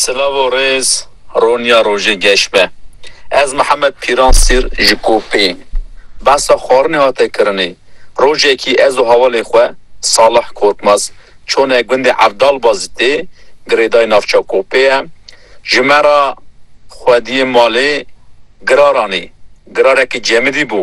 Silav û rêz, roniya rojê geş be. Ez Mihemed Pîran Sîr ji Kopê. Behsa xwarinê hate kirinê. Rojekî ez û hevalê xwe Salih Korkmaz çûne gundê Evdalbazî tê, girêdayî navça Kopê ye. Ji me re xwediyê malê giraranê. Girarekî cemidî bû.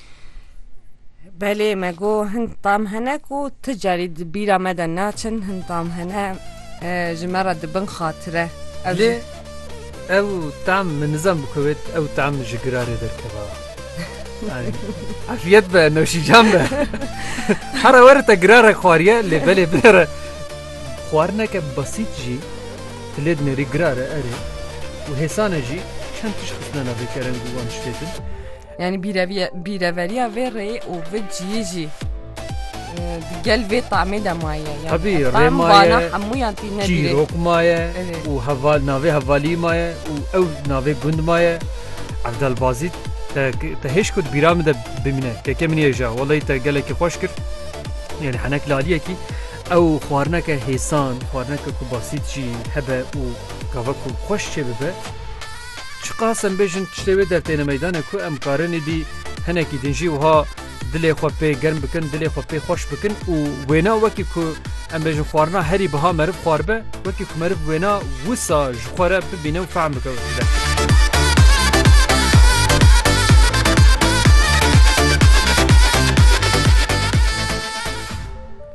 Belê me got hin tam hene ku ti carî di bîra me de naçin hin tam hene ji me re dibin xatire. Lê ew tam min nizam bi kuwêt ew tam ji girarê derkeva. Afiyet be noşîcan be. Hera were te girare xwariye lê belê binere xwarineke besît jî tu lê dinêrî girare erê û hêsane jî çend tişt xistine navê kerem û wan şitêtin. Yanî bîreveriya vê rê û vi ciyê jî di gel vê temê de maye. Tevî rê maye hemûyan tî ne çîrok maye û heval navê hevalî maye û ew navê gund maye Evdelbazî te hêj kut bîra min de bimîne keke min hêja welay te gelekî xweş kir yani henek laliyekî ew xwarineke hêsan xwarineke ku basît jî hebe û gava ku xweş çê bibe Çiqas em bêjin tiştê wê dertêne meydanê ku em karin êdî hinekî din jî wiha dilê xwe pê germ bikin, dilê xwe pê xweş bikin û wêna wekî ku em bêjin xwarina herî biha meriv xwaribe, wekî ku meriv wêna wisa ji xwe re bibîne û fehm bike wekî dertê.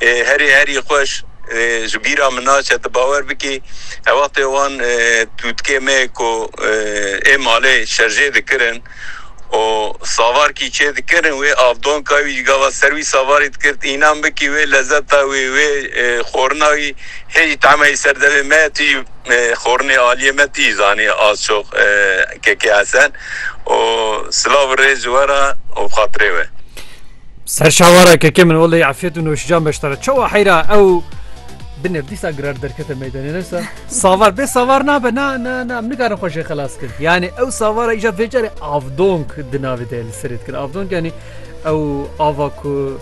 Herî herî xweş ji bîra min naçe tu bawer bikî her wextê wan tûtkê me ku ê malê şerjê dikirin û savarkî çê dikirin wê avdonka wî ji gava ser wî savarî dikirt înan bikî wê lezeta wî wê xorina wî hê jî tahmeyî ser devê me tu jî xorinê aliyê me tu jî zanî az çok kekê hesen û silav û rêz ji we re û bi xatirê we. Ser şawara keke min olê afiyet û nûşcan beşdara. Çawa heyra ew bi nefdîsa girar derkete meydanê nesa. Savar bê savar nabe na na na min nikarin xweşê xelas kir. Yani ew savara îja vê carê avdonk di navê de li serê dikir. Avdonk yani ew ava ku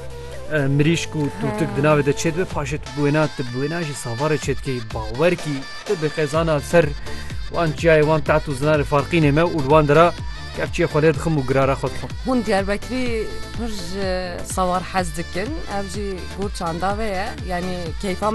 e, mirîşk û tûtik di navê de çêdibe paşê tu bûêna tu bûêna jî savarê çêdikî bawer kî tu bi qezana ser wan çiyayê wan taht û zinarê farqînê me û li wan dira Kevçiyê xwe lê dixim û girara xwe dixwim. Hûn Diyarbekirî pir ji sawar hez dikin. Ev jî gor çanda ve ye. Yanî keyfa